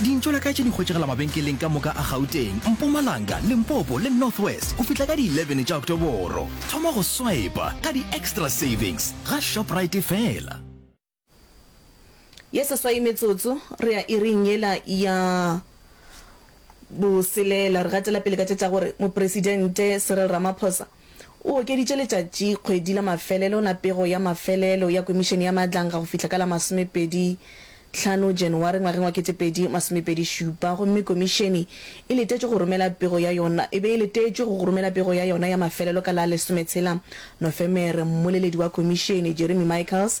Dintšo la ka tše di hwetšegela mabenkeleng ka moka a Gauteng, Mpumalanga, Limpopo le North West go fihla ka di 11 tša Oktoboro. Thoma go swipa ka di-extra savings ga Shoprite fela. Ye seswai metsotso, re ya iring yela ya boselela. Re gatela pele ka tše tša gore Mopresidente Cyril Ramaphosa O okeditše letšatši kgwedi la mafelelo la pego ya mafelelo ya Komišene ya Maatlanga go fihla ka la masomepedi tlhano January ngwageng wa kete pedi masomepedi šupa gomme Komišene e letetšwe go romela pego ya yona e be e letetšwe go romela pego ya yona ya mafelelo ka la lesometshela Nofemere Mmoleledi wa Komišene, Jeremy Michaels,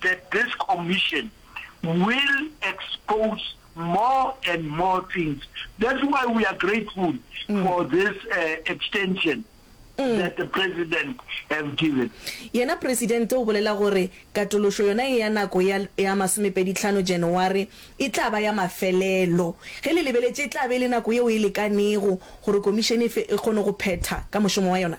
The Disc Omission will expose more and more things that's why we are grateful for this extension that the President have given. Yena Presidente o bolela gore katološo yona ye ya nako ya ya masomepedi tlhano January e tla ba ya mafelelo. Ge le lebeletše e tla be e le nako yeo e lekanego gore Komišene e fe e kgone go phetha ka mošomo wa yona.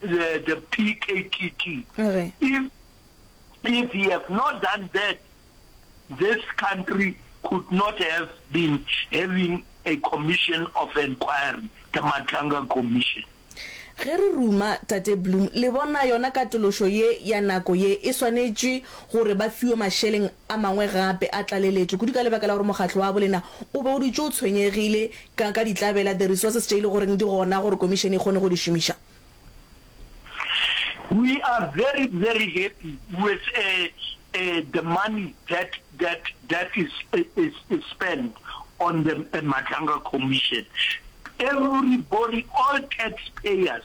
the, the PKKK. Okay. If, if he have not done that, this country could not have been having a commission of inquiry, the Matlanga Commission. ge re ruma tate bloom le bona yona katološo ye ya nako ye e swanetše gore ba fiwe mašeleng A mangwe gape a tlaleletšwe kudu ka lebaka la gore mokgatlo wa bolena o be o dutše o tshwenyegile ka ka ditlabela, the resources, tše e le goreng di gona gore komišene e kgone go di šomiša. We are very very happy with the money that that that is is is spent on the Matlanga Commission. Everybody, all taxpayers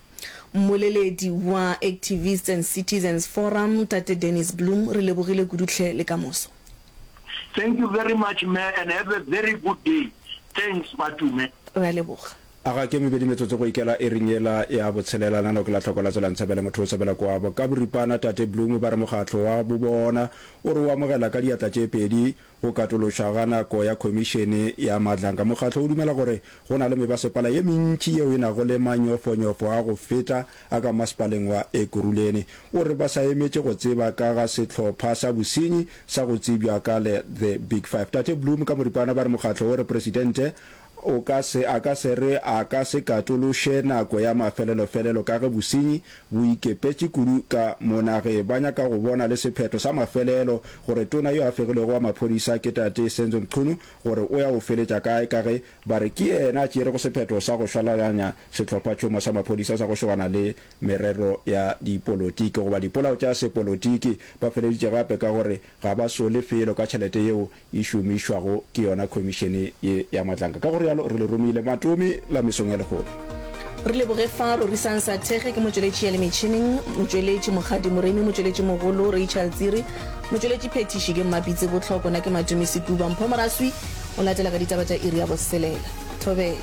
Mmoleledi wa Activists and Citizens Forum, Tate Dennis Bloem, re lebogile kudu tlhe le ka moso. Thank you very much me and have a very good day thanks Matume. Re a leboga. A ga ke mebedi metsotso go ikela iring yela ya botshelela, nano ke la tlhoko la tswela ntshabela motho o tshabela kwabo ka boripana. Tate Bloem ba re mokgatlo wa bobona o re o amogela ka diatla tše pedi Go katološwa ga nako ya Khomišene ya Maatlanka, Mokgatlo o dumela gore go na le mebasepala ye mentši yeo e nago le manyofonyofo a go feta a ka masepaleng wa Ekurhuleni. O re ba sa emetše go tseba ka ga sehlopha sa bosenyi sa go tsebjwa ka le The Big Five. Tate Bloom ka moripana ba re mokgatlo o re Presidente O ka se, a ka se re a ka se katološe nako ya mafelelofelelo ka ge bosenyi bo ikepetše kudu ka mo nageng. Ba nyaka go bona le sephetho sa mafelelo gore tona yo a fegilwego wa maphodisa ke Tate Senzo Mchunu gore o ya go feletša kae ka ge ba re ke yena a tšeerego sephetho sa go swalaganya sehlophatšhomo sa maphodisa sa go šogana le merero ya dipolotiki goba dipolao tša sepolotiki. Ba feleditše gape ka gore ga ba sole felo ka tšhelete yeo e šomišwago ke yona khomišene ye ya Matlanka. Ka go realo re le romile matomi la mesong ya lehono. Re leboge fa Rorisang Sathege ke motšweletši ya le metšhineng, motšweletši Mokgadi Moremi, motšweletši mogolo Rachel Tsiri, motšweletši phethiši ke Mmapitse Botlhoko, na ke Matumi Sekuba. Mpho Moraswi o latela ka ditaba tša iri ya boselela. Thobela.